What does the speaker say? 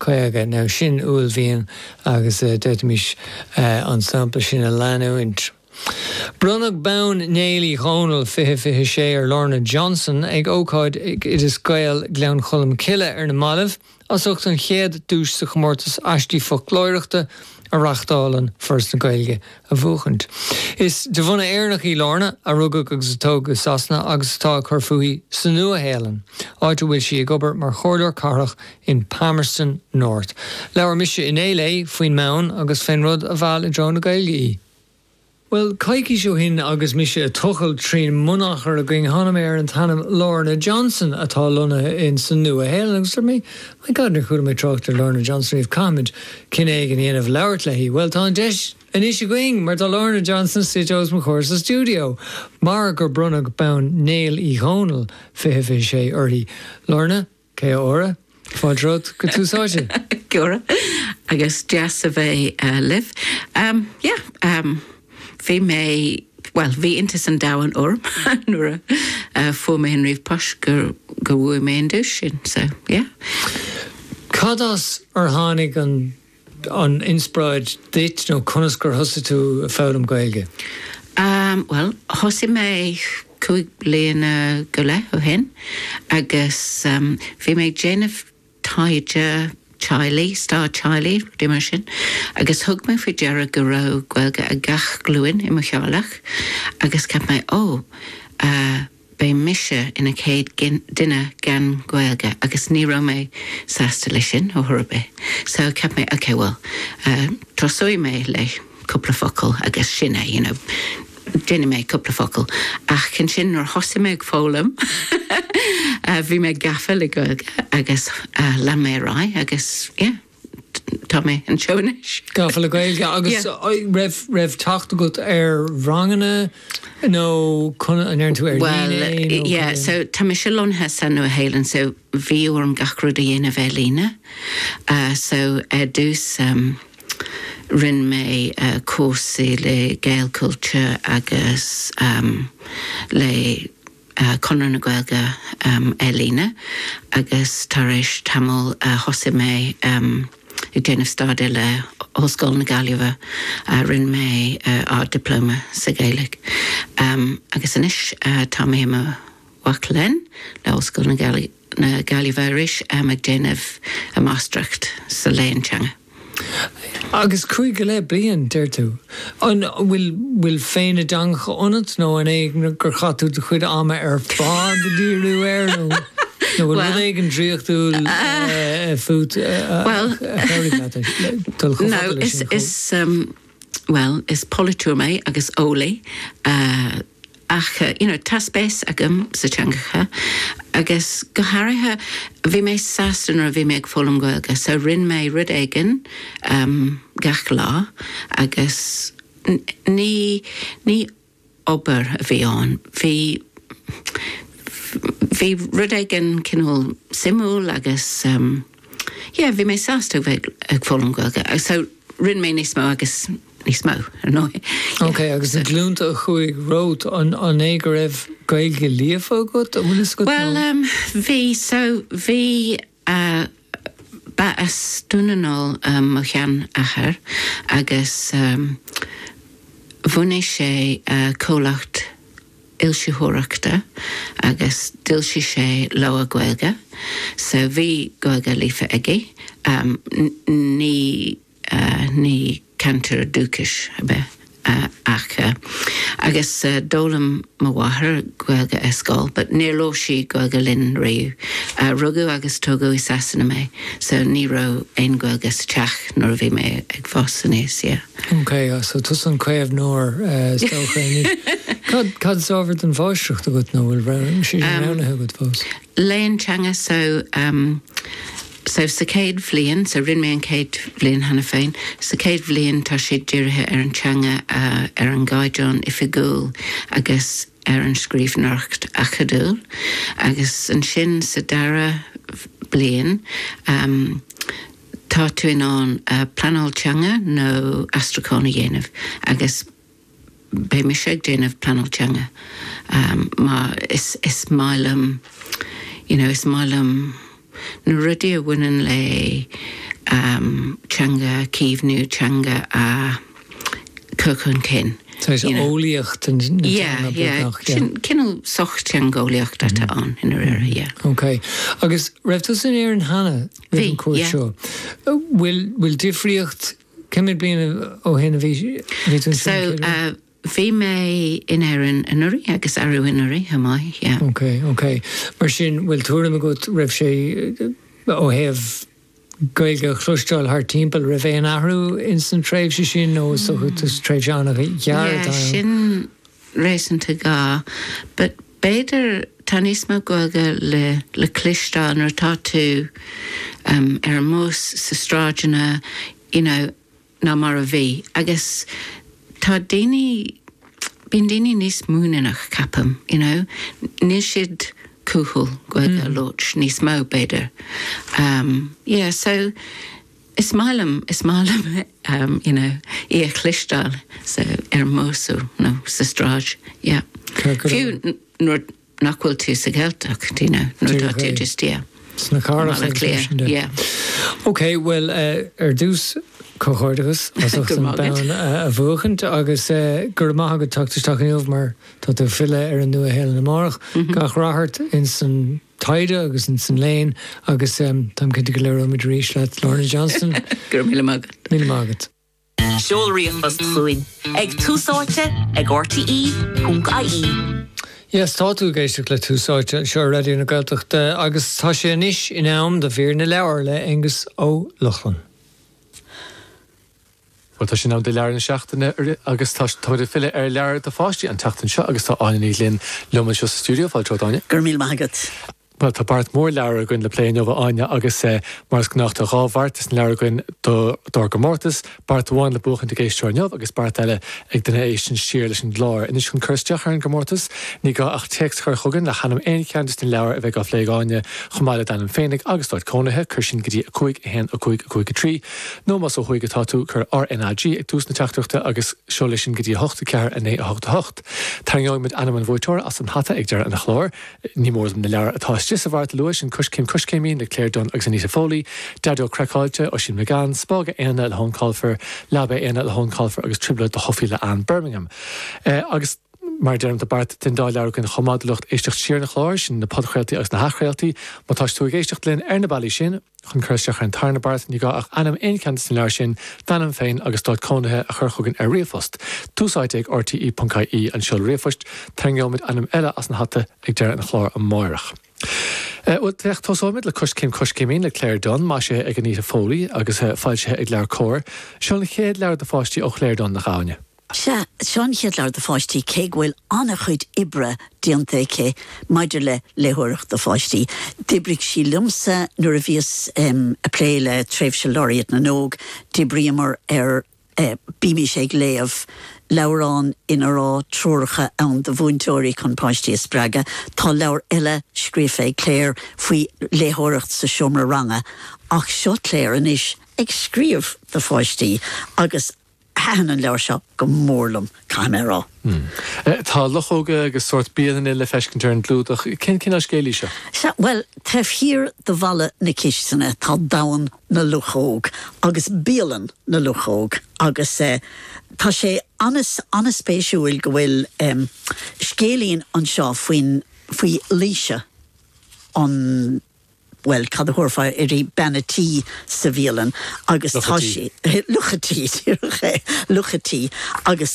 50. Nó sin uaillmhian agus d'fhéadfaimis an sampla sin a leanúint. Bronnadh bonn Néill Uí Dhónaill, 20 26, ar Lorna Johnson ag ócáid ag Oideas Gael, Gleann Cholm Cille, ar na mallaibh as ucht an chéad duais sa chomórtas Aistí Foclóireachta a reachtálann Foras na Gaeilge a bhuachaint. Is de bhunadh Éireannach í Lorna, a rugadh agus a tógadh i Sasana agus atá ag cur fúithi sa Nua-Shéalainn, áit a bhfuil sí ag obair mar Chomhairleoir Cathrach in Palmerston North. Labhair mise inné léi faoin mbonn agus fén rud a mheall i dtreo na Gaeilge í. Bhuel, coicís ó shin agus mise ag tochailt trín mbunachar againn, tháinig mé ar an t-ainm Lorna Johnson, atá lonnaithe in sa Nua-Shéalainn, agus dúirt mé, My God, níor chuala mé trácht ar Lorna Johnson riamh, caithfimid cinneadh éigin a dhéanamh labhairt léi. Bhuel, tá an deis anois againn, mar tá Lorna Johnson suite os mo chomhair sa stiúideo, mar gur bronnadh bonn Néill Uí Dhónaill 2026 uirthi. Lorna, kia ora. Fáilte romhat go Tús Áite. Kia ora, agus deas a bheith libh. Yeah. Bhí mé, bhuel, bhí iontas an domhain orm nuair a fuair mé an ríomhpost gur, gur bhuaigh mé an duais sin. So, yeah. Cad as ar tháinig an, an inspioráid duit nó conas gur thosaigh tú ag foghlaim Gaeilge? Um, bhuel, thosaigh mé cúig bliana go leith ó shin agus, um, bhí mé ag déanamh taighde teaghlaigh, stair teaghlaigh, rudaí mar sin, agus thug mé faoi deara go raibh Gaeilge ag gach glúin i mo theaghlach agus cheap mé, Ó, beidh mise ina céad duine gan Ghaeilge agus ní raibh mé sásta leis sin ar chor ar bith. So cheap mé, OK, bhuel, tosóidh mé le. cúpla focal agus sin é, you know, déanfaidh mé cúpla focal. Ach ansin nuair a thosaigh mé ag foghlaim, bhí mé gafa le Gaeilge agus lean mé ar aghaidh agus, yeah, tá mé anseo anois. Gafa le Gaeilge agus raibh teacht agat ar ranganna nó an ndéanann tú ar líne é? Bhuel, yeah, so tá mise lonnaithe sa Nua-Shéalainn so bhí orm gach rud a dhéanamh ar líne. So ar dtús, Rinne mé cúrsaí le Gaelchultúr agus le Conradh na Gaeilge ar líne agus tar éis tamaill thosaigh mé ag déanamh staidéir le hOllscoil na Gaillimhe. Rinne mé Ard-Dioplóma sa Ghaeilge agus anois tá mé i mo mhac léinn le hOllscoil na Gaillimhe. na Gaillimhe arís, am ag déanamh a máistreacht sa Léann Teanga. Agus cúig go leith bliain, deir tú. An bhfuil féith na dteangacha ionat nó an é gur chaith tú do chuid ama ar fad ag díriú air nó an bhfuil rud éigin draíochtúil fút a chabhraigh leat dul chomh fada leis sin? bhuel, is polaiteoir mé agus eolaí, ach you know tá spéis agam sa teangacha agus go háirithe bhí mé sásta nuair a bhí mé ag foghlaim Gaeilge so rinne mé rud éigin gach lá agus ní obair a bhí ann. Bhí, bhí rud éigin cineál suimiúil agus em, yeah, bhí mé sásta a bheith ag foghlaim Gaeilge so rinne mé níos mó agus níos mó, ar ndóigh. Ok, agus na glúnta a chuaigh romhat, an, an é go raibh Gaeilge líofa acu, an bhfuil fhios agat nó...? Bhuel, em, bhí, so bhí, A, Ba as Dún na nGall do mo sheanathair agus bhunaigh sé comhlacht foilsitheoireachta agus d'fhoilsigh sé leabhar Gaeilge, so bhí Gaeilge líofa aige. Ní. ní cainteoir dúchais a bhí ann ach agus d'fhoghlaim mo mháthair Gaeilge ar scoil but níor labhair sí Gaeilge linn riamh. Rugadh agus tógadh i Sasana mé so ní raibh aon Ghaeilge sa teach nuair a bhí mé ag fás aníos, yeah. OK, so tusa an caomhnóir is dócha anois. Cad is ábhar don mháistreacht agat nó an bhfuil sé sin roghnaithe agat fós? léann teanga so so sa chéad bhliain so rinne mé an chéad bhliain cheana féin sa chéad bhliain tá siad dírithe ar an teanga a ar an gcaighdeán oifigiúil agus ar an scríbhneoireacht acadúil agus ansin sa dara bliain tá tú in ann pleanáil teanga nó aistriúchán a dhéanamh agus Beidh mise ag déanamh pleanáil teanga. Mar is maith liom, you know, is maith liom na rudaí a bhaineann le teanga a chaomhnú, teanga a chur chun cinn. Saghas eolaíocht na teanga beagnach, yeah? Yeah, yeah. Cineál sochtheangeolaíocht atá ann i ndáiríre, yeah. Ok. Agus raibh tú in Éirinn cheana roimh an cuairt seo? Bhí, yeah. Bhfuil difríocht Cé mhéad bliain ó shin a bhí tú anseo? Bhí mé in Éirinn anuraidh agus arú anuraidh chomh maith, yeah. Ok, ok. Mar sin, bhfuil tuairim agat, raibh sé, ó thaobh Gaeilge a chloisteáil thart timpeall, raibh aon athrú in san tréimhse sin nó is dócha, tréimhse an-ghearr atá ann? Yeah, sin, réasúnta dhá, but b'fhéidir tá níos mó Gaeilge le le cloisteáil nuair atá tú ar an mbus, sna sráideanna, you know, ná mar a bhí. Agus tá daoine, bíonn daoine níos muiníneach, ceapaim, you know, níl siad cúthail Gaeilge a labhairt níos mó, b'fhéidir. Yeah, so. Is maith liom, is maith liom, you know, í a chlisteáil sa, ar an mbus nó sa tsráid, yeah. Cé go raibh. Fiú nuair nach bhfuil tú sa Ghaeltacht, you know, nuair atá tú just, yeah. Sna carr agus leis an de. Yeah. Ok, bhuel, ar dtús, comhghairdeachas as ucht an bonn a bhuachaint agus go raibh maith agat teacht isteach inniu mar tá tú ag filleadh ar an Nua-Shéalainn amárach. Gach rath ort ins an taighde agus insan léann agus táim cinnte go labhróimid arís leat Lorna Johnston. Go raibh míle maith agat. Míle maith agat. Seol ríomhphost chugainn ag Tús Áite ag RTÉ.ie. Yes, tá tú ag éisteacht le Tús Áite anseo ar Raidió na Gaeltachta agus tá sé anois in am do mhír na leabhar le hAonghus Ó Lochlainn. Bhuel, tá sé in am do leabhar na seachtaine agus tá muid ag filleadh ar leabhair do pháistí an tseachtain seo agus tá Áine Ní Ghlinn liom anseo sa stiúideo. Fáilte romhat, Áine. Go raibh míle maith agat. Bhuel, tá beart mór leabhar againn le plé inniu, a Áine, agus mar is gnách tá dhá bheart de sna leabhair againn dár gcomórtas, beart amháin le buachaint ag éisteoir inniu agus beart eile ag duine a éisteann siar leis an gclár. Anois chun cur isteach ar an gcomórtas, ní gá ach téacs a chur chugainn le hainm aon cheann de sna leabhair a bheidh á phlé ag Áine, chomh maith le d'ainm féinig agus d'áit cónaithe, cuir sin go dtí 5 1 5 5 3. Nó más ó thuaidh atá tú, cuir RNAG ag tús na teachtaireachta agus seol é sin go dtí 8 4 9 8 8. Tarraingeoidh muid ainm an bhuaiteora as an hata ag deireadh an chláir. Ní mór dom na leabhair atá istigh sa bheart a lua, sin Coiscéim Coiscéimín le Claire Dunne agus Anita Foley, Daideo Craiceáilte, Oisín McGann, Spága Éanna le hEoin Colfer, Leaba Éanna le hEoin Colfer agus Trioblóid do Shophie le Anne Birmingham. Agus mar a deirim, tá beart de na leabhair againn chomh maith do lucht éisteacht siar an chláir, sin na podchraoltaí agus na hathchraoltaí. Má tá tú ag éisteacht linn ar na bealaí sin, Chun cur isteach ar an tarna beart, ní gá ach ainm aon cheann de sna leabhair sin, d'ainm féin agus d'áit cónaithe, a chur chugainn ar ríomhphost. Tús áite ag RTE.ie an seoladh ríomhphoist. Tarraingeoimid ainm eile as an hata ag deireadh an chláir amárach. Eh, bhuel, féach, tosóimid le Coiscéim Coiscéimín le Claire Dunne, maisithe ag Anita Foley agus, eh, foilsithe ag LeabhairCOMHAR. Seo an chéad leabhar do pháistí ó Chlaire Dunne, nach ea? Sea, seo an chéad leabhar do pháistí, cé go bhfuil an-chuid oibre déanta aici maidir le léitheoireacht do pháistí. D'oibrigh sí liomsa nuair a bhíos ag plé le tréimhse Laureate na nÓg, d'oibríomar ar Bímís ag Léamh, leabhrán ina raibh treoracha ann do mhúinteoirí chun páistí a spreagadh. Tá leabhar eile scríofa ag Claire faoi léitheoireacht sa seomra ranga, ach seo Claire anois ag scríobh do pháistí agus. Thaithin an leabhar seo go mór liom, caithfidh mé a rá. Tá luchóga agus sórt bialann le feiscint ar an gclúdach. Cén cineál scéil í seo? Sea, bhuel, taobh thiar de bhalla na cistine tá domhan na luchóg agus bialann na luchóg agus tá sé an-an-spéisiúil go bhfuil scéilín anseo faoin, faoi Laoise an Bhuel, cad a thabharfá uirthi? Bean a' tí sa bhialann agus tá sí, luch a' tí, luch a' tí, luch a' tí agus